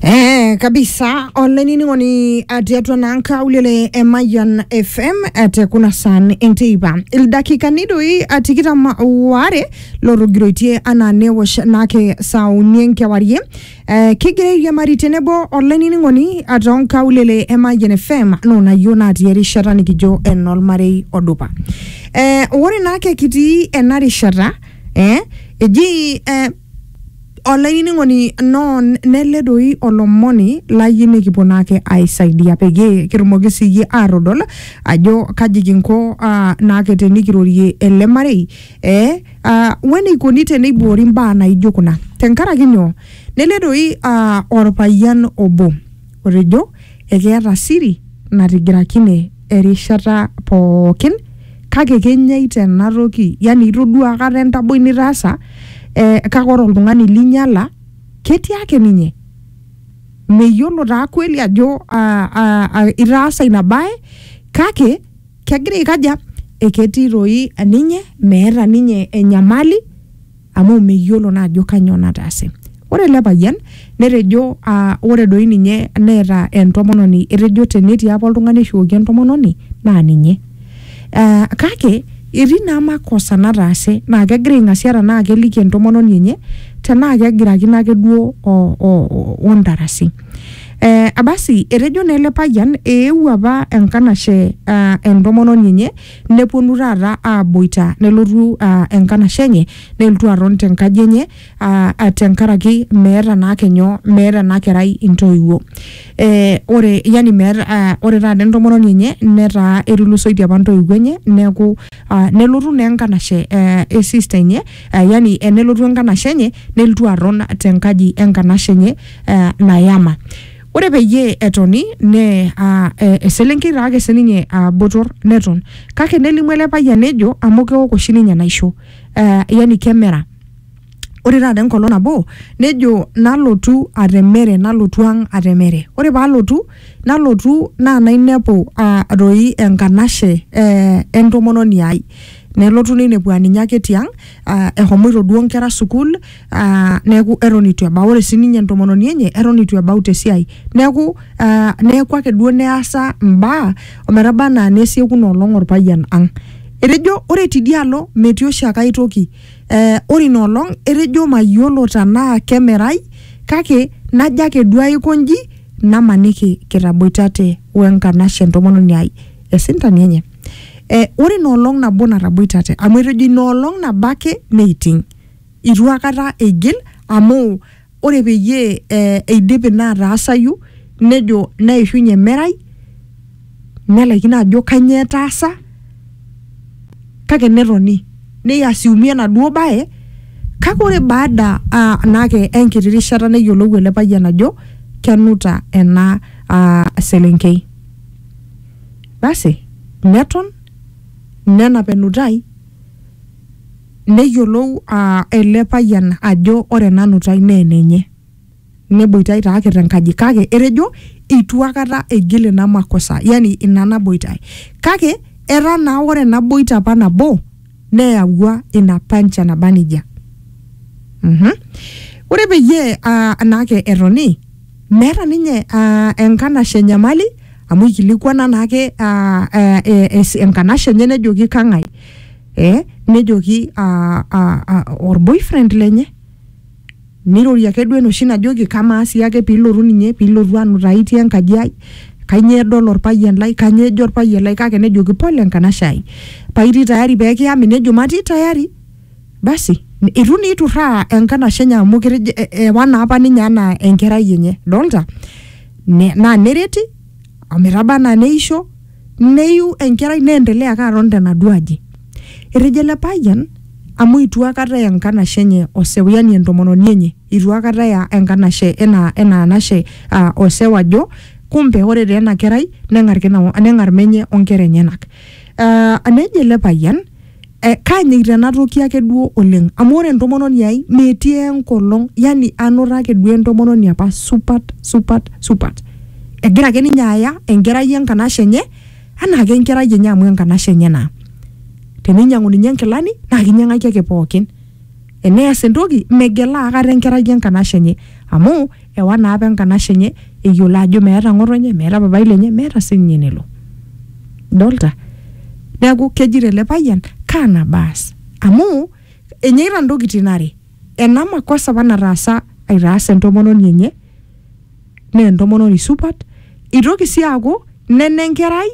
Eh, kabisa olanining'oni atii atua naa nkaulele e Mayian FM eh, te kuna saan enteipa ildakikani doi ah, tikitam waare lotogiroitie anaa newosh naake saa uni enkewarie eh, kigira airiamari tenebo olanining'oni ah, too nkaulele e Mayian FM noonayio natii erishata nikijo enolmarei odupa eh, ore naake kitii ena rishata eh, eji eh, Olainining'oni non nele doi olomoni layie nikipuo naake aisaidia peyie kitumoki siyie atodol ajo kaji kinko uh, naake tenikirorie ele marei eh, uh, weneikoni teneiboori imbaa naijo kuna tenkaraki nyoo nele doi uh, orpayian obo Otejo ekeeta siri natigirakine erishata pookin kake kenyaita ena toki yani itodua akata entaboi nitaasa eh, kake ore oltung'ani linyala ketii ake ninye meyiolo taa kweli ajo ah, ah, ah, itaasa ina bae kake kegira aikaja eketii toi ninye meeta ninye enyamali amu meyiolo naa ajo kanyoo nataase. Ore ele payian netejo aa ore doi ninye neeta entomononi, etejo tenetii apa oltung'ani oishukoki entomononi naa ninye. Aa kake etii naa makosa nataase naa kegira aing'asia tenaa keliki entomononi enye tenaa kegirakino ake duo o, o, o ntarasi. Ee basi etejo naa ele payian eewuo apa enkanashe aa entomononi enye nepuonu taata aaboita nelotu aa, enkanashe enye nelotu aton tenkaji enye aa, aa, tenkaraki meeta naake nyoo meeta ena kerai intoiwuo eh, ore yani meeta aa, ore taata entomononi enye netaa etulusoitie apa intoiwuo enye neeku aa, nelotu naa enkanashe eh, e sister enye aa, yani eh, nelotu enkanashe enye nelotu aton tenkaji enkanashe enye eh, nayama Ore peyie etoni ne a, e, eselenkei taa ake sininye a, botor neton kake nelimu ele payian nejo amu keok oshi ninye enaisho eh, yani kemera ore taata enkolong nabo nejo nalotu atemere nalotu ang atemere ore palotu nalotu naa nainepu ah, doi enkanashe eh, entomononi ai nelotu neinepu aninye ake tiang ah, ehomoito duo inkera sukuul ah, neeku eton itu ebau ore sininye entomononi enye eton itu ebau tesiai neeku ah, neeku ake duo neasa mbaa ometaba anaa nesieku ina olong orpayian ang etejo ore tidialo metii oshiake ae toki eh, ore ina olong etejo mayiolo tenaa kemerai kake najo ake duo aiko nji namaniki kitaboitate wenkanashe entomononi ai esintani enye eh, ore ina olong nabo nataboitate amu etejo ina olong nabo ake neiting eitu akata eigil amu ore peyie eh, eidip ina ataasayu nejo neishunye emerai nelaikino ajo kanyoo etaasa kake netoni neiasiumia enaduo baye kake ore baada uh, naake enkiti rishata neyiolou ele payian ajo kenuta ena uh, selenkei basi neton nenap enutai Neyiolou ele payian ajo ore ena nutai naa enenye. Neboitae taa ake te nkaji kake etejo eitu akata eigil ina makosa yani ina naboitae. Kake etaa naa ore ena boita apa nabo neyawua ina pancha naba nejia. Uhum. Ore peyie naa ake etoni meeta ninye enkanashe enyamali amu eikilikuana naa ake enkanashe enye nejoki kang'ae? eh, nejoki ah, ah, ah, orboyfriend lenye nirorie ake duo enoshi najoki kamaa sii ake piilotu ninye piilotu anutai itii enkaji ai kanyoo edol orpayian lai kanyoo ejo orpayian lai kake nejoki pole enkanashe ai paitii tayari pekiyami nejo matii tayari basi n- itu naa iturraa enkanashe enye amu ketejo e- ewa naa apa ninye anaa enkerai enye dolta ne, naa nereti ometaba anaa neisho neiu enkerai neendelea ake aton tenaduo aji. Etejo ele payian amu eitu akata eya enkanashe enye oseu yani entomononi enye eitu akata eya enkanashe ena ena anashe uh, oseu ajo kumbe ore taa ena kerai neng'ar kina neng'ar menye onkera enyenak uh, nejo ele payian Eh, kaanyikita ena toki ake duo oleng amu ore entomononi ai metii enkolong yani anoto ake duo entomononi apa supat supat supat egira ake ninye aya enkerai enkanashe enye anaa ake enkerai enye amu enkanashe enye naa teninyiang'u ninye inkilani naa kinyiang'aki ake pookin enees entoki megela akata enkerai enkanashe enye amu ewa naa apa enkanashe enye eyiolo ajo meeta ng'otonye meeta papai lenye meeta sininye enelo dolta neeku kejito ele payian kaa nabaas amu enyeita ntokitin are ena makosa apa nataasa aitaas entomononi enye naa entomononi supat itoki sii aaku nena enkerai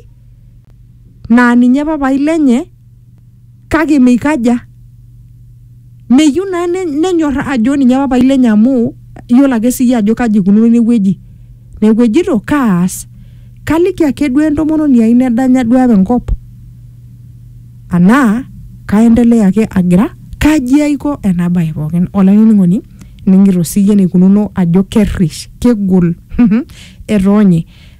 naa ninye papai lenye kake meikaja meyieu naa ne- nenyorra ajo ninye papai lenye amu iyiolo ake siyie ajo kaji ikununo inewueji neeku ejito kaas kaliki ake duo entomononi ai nedanya duo apa enkop anaa kaendelea ake agira kaji aiko ena baye pookin olainining'oni ining'ito siyie enikununo ajo kerrish kegol etoonye